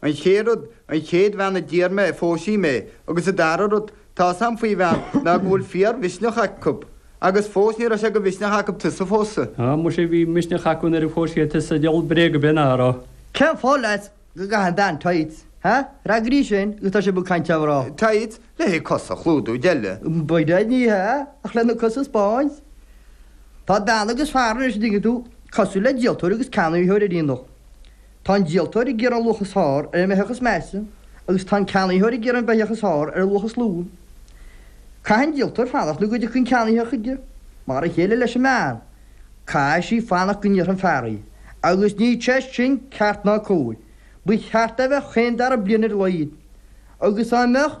An chéad rud, an chéad bhean a d'iarr mé, phós sí mé, agus an dara rud, tá's a'm faoi bhean ná go bhfuil fíor mhisneach acu. Agus fós ní raibh sé de mhisneach acu tusa a phósadh. Á, muise bhí misneach acu nuair a phós siad tusa, diabhal bréag a bheith ná a rá. Cén fáth leat go gcaitheann bean tights, ha? Freagraígí sin ó tá sibh ag caint ar mhná. Tights? Le haghaidh cosa a chlúdú, deile. Baineann, ní hea, ach le na cosa a 'speáint. Tá bean agus fear anois, an dtuigeann tú, cosúil le díoltóir agus ceannaitheoir ar aonach. Tá an díoltóir ag iarraidh an luach is fearr ar an mbeithíoch is measa agus tá an ceannaitheoir ag iarraidh an beithíoch is fearr ar an luach is lú. Caithfidh an díoltóir fanacht nó go dtiocfaidh an ceannaí chuige. Mar a chéile leis an mbean, caithfidh sí fanacht go n-iarrfaidh an fear í. Agus níl sé sin ceart ná cóir. Ba cheart é a bheith chaon dara bliain ar a laghad. Agus dá mbeadh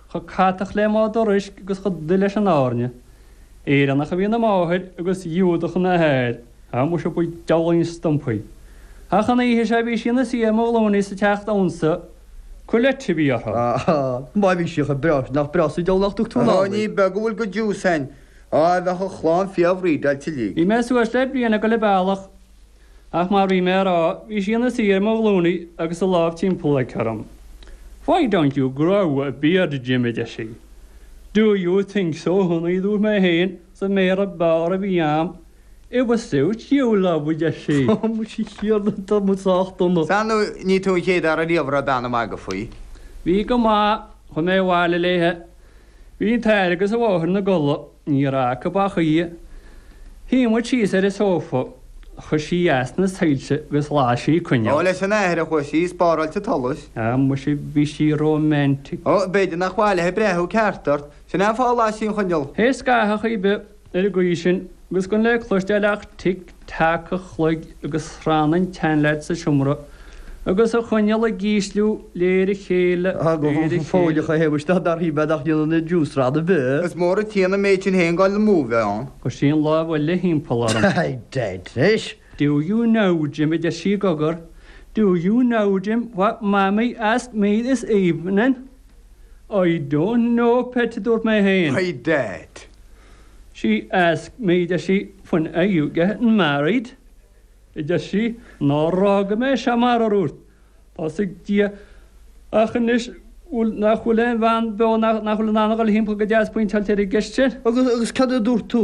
chomh catach le madra uisce agus chomh dubh leis an airne. Éireannach a bhí ina máthair agus Giúdach ina hathair, a muise ba diabhlaí an stumpa í. Ach an oíche seo bhí sí ina suí ar mo ghlúine sa teach damhsa, Colette a bhí uirthi. Má bhí sí chomh breá sin, nach breá sa diabhal nach dtug tú anall í? Ní beag a bhfuil de Jews ann. Á, bheadh an chlann fíor bhrídeáilte léi. Bhí mé suas le bliain ag goil a bealach Ach mar bhí mé a rá, bhí sí ina suí ar mo ghlúine agus a lámh timpeall orm. Why don't you grow a beard Jim, a deir sí. Do you think so honey a dúirt mé fhéin, sa mBéarla ab fhearr a bhí a'm. It would suit you love a deir sí. Tá muid thiar de, tá muid sách dona. Is ar ndóigh, ní tú an chéad fhear a raibh bean ag déanamh magadh faoi. Bhí go maith, chuaigh mé abhaile léithe. Bhí an t-athair agus an mháthair ina gcodladh. Ní raibh acu ach í. Shuigh muid síos ar an sófa. Chuir sí as na soilse agus las sí coinneal. Ó, leis an athair a chuaigh sí, ag spáráil an tsolais. Á, muise, bhí sí romantic. Ó, b'fhéidir nár mhaith léithe breathnú ceart ort. Sin é an fáth a las sí an choinneal. Théis scaitheamh ar chaoi ar bith. ar an gcaoi sin agus gan le cloisteáil ach tic teac an chloig agus srann an tseanleaid sa seomra agus an choinneal ag ísliú de réir a chéile, de réir a chéile. Tháinig an fóilleach a théamh isteach dar thí bheith nach ndéanann na Jews srann ar bith. Is mór a téann an méid sin fhéin gan an mó bheith ann. Chuir sí an lámh eile thimpeall orm. Hi dead fish! Do you know, Jim, a deir sí i gcogar, do you know, Jim, what Mamaí asked me this evening? I don't know Pet a dúirt mé féin. I dat. She asked me a deir sí when are you getting married? a deir sí ná raibh go mbeidh sé mar fharúirt. Tá's ag Dia ach anois nach bhfuil aon bhean beo nach bhfuil in ann a dhul thimpeall go deas pointeáilte ar an gceist sin. Agus agus cad a dúirt tú?